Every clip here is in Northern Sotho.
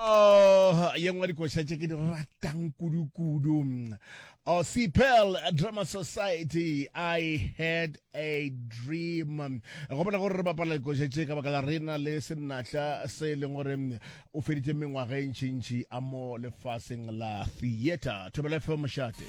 Oh, ye nngwe dikoša tše ke di ratang kudu-kudu oh, cpel drama society i had a dream go bona gore re bapala dikoša tše ka baka la rena le senatla se e leng gore o feditse mengwaga e ntšintši a mo lefaseng la theatre thobela fm mošate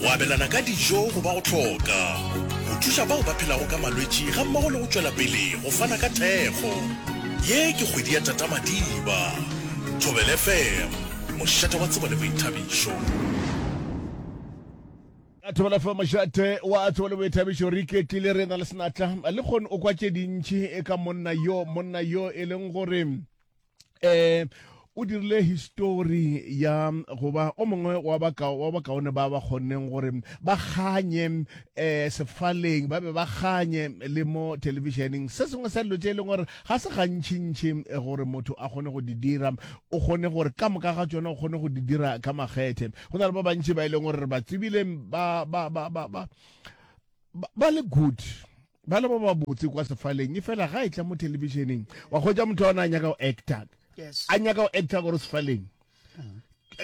Go abelana ka dijo go ba go hloka go thuša bao ba phelago ka malwetši gammogo le go tšwela pele go fana ka thekgo. Ye ke kgwedi ya Tata Madiba. Thobela FM, mošate wa tsebo le boithabišo. A Thobela FM, mošate wa tsebo le boithabišo. Re iketlile re na le senatla. Lekgone o kwa tše dintši ka monna yo, monna yo e leng gore eh o dirile histori ya go ba o mongwe wa bakaone ba ba kgonneng gore ba kganye um sefaleng ba be ba kganye le mo televišeneng se sengwe sa dilo tse e leng gore ga se gantšintši eh, gore motho a kgone go di dira o kgone gore ka moka ga tsone o kgone go di dira ka makgethe go na le ba bantši ba e leng gore re ba tsebile ba ba le good ba le ba ba botse kwa sefaleng e fela ga e tla mo televisioneng wa kgwetsa motho ona a nyaka go actor a nyaka go actor gore sefaleng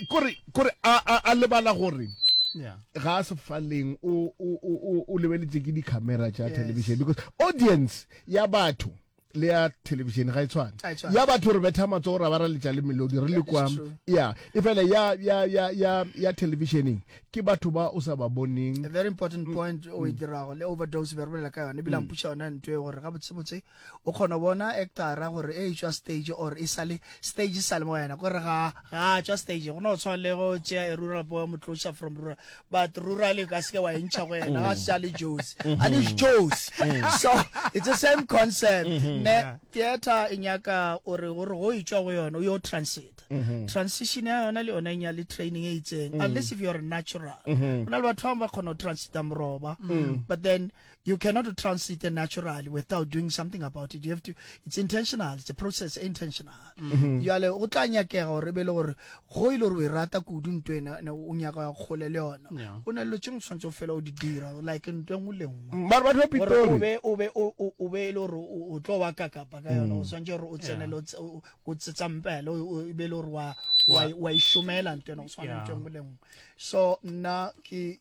kore kore a lebala gore ga a sefaleng o lebeletse ke di-camera tša television because audience ya batho le ya television ga e tshwane ya batho re betha matsogo ra ba ra letša le melodi re le kwa ya e fela ya ya ya ya ya televisioning ke batho ba o sa ba boneng a very important mm. point o e mm. dirago le overdose be re bolela ka yone ebile mm. mpuša yona nto e gore ga botsebotse o kgona bona actora gore e tswa stage or e sale stage e sale mo wena kore ga ga tswa stage go ne go tshwana le go tšea e rural boy motloša from rural but rurale ka seke wa entšha go yena ga sa le josi a le josi so it's the same concept ne theater e nyaka o re gore go e tšwa go yona o yo transit Mm-hmm. transition ya yona le yona e nyale training e itseng mm-hmm. unless if you're natural mm-hmm. go na le batho bangwe ba kgona go transita moroba but then You cannot transit a natural without doing something about it. You have to, it's intentional. It's a process, intentional. Mm -hmm. Yale, o tla nyakega gore be le gore go ile gore o e rata kudu ntho ena ne o nyaka ya kgole le yona. O na le tšeng tshwantse o fela o di dira like ntho e nngwe le nngwe. Mm, ba ba tlo pitori. O be o be o be le gore o tlo wa ka kapa ka yona o mm. tshwantse gore o tsene le o tsetsa mpele o be le gore wa wa wa ishomela ntho ena o tshwana ntho e nngwe le nngwe. So nna ke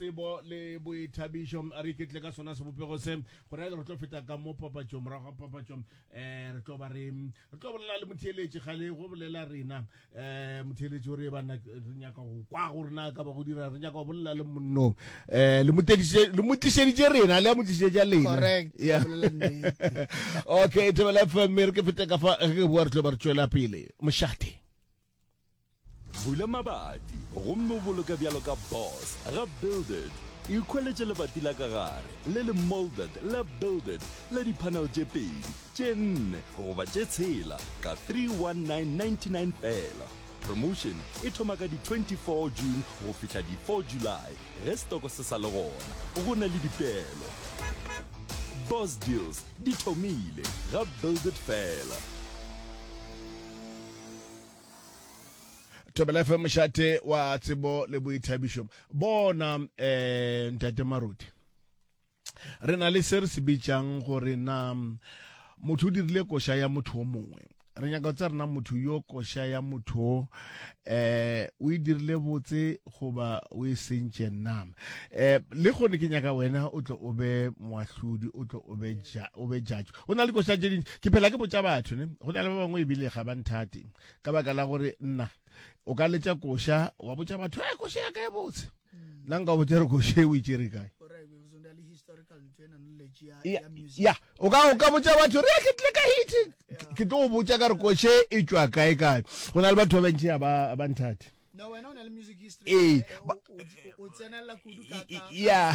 tsebo le boithabišo a re iketle ka sona sebopego se go raya re tlo feta ka mo papatšong morago ga papatšo um eh, re tlo ba re re tlo bolela le motheeletši gale go bolela rena um eh, motheeletši o re banna re nyaka go kwa gore na ka ba go dira re nyaka go bolela le monnong um le motlišeditše rena le ya motlišeditša lena okay thebela fm re ke fete ka fa re ke boa re tlo ba re tšwela pele mošate Bula mabati gomme o boloke bjalo ka boss ga builded ikgweletše lebati la ka gare le le molded la builded la dipanel tše pedi tše nne goba tše tshela ka 31999 fela promotion e thoma ka di-24 june go fihla di-4 july ge setoko se sa le gona go na le dipeelo boss deals di thomile ga builded fela thobela fm mošate wa tsebo le boithabišo bona um ntate maruti re na le se re se bitšang gore na motho o dirile koša ya motho o mongwe re nyaka go tsa rena motho yo koša ya motho eh o e dirile botse goba o e sentše na eh le gone ke nyaka wena o tlo o be moahlodi o tlo o be judge go na le dikoša tše dintši ke phela ke botša batho ne go na le ba bangwe ebile ga ba nthate ka baka la gore nna o ka letša koša wa botša batho e koša ya ka e botse nna nka botša re koša e o itsere kae ya o ka o ka botša batho re ke tle ka hiti ke tlo go botša ka re koše e tšwa kae kae go na le batho ba bantši ya ba ba nthate ee ya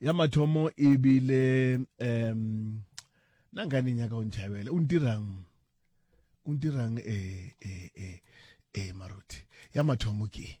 ya mathomo e bile um na nka ne nyaka o ntšhabela o ntirang o ntirang e e e e maruti ya mathomo ke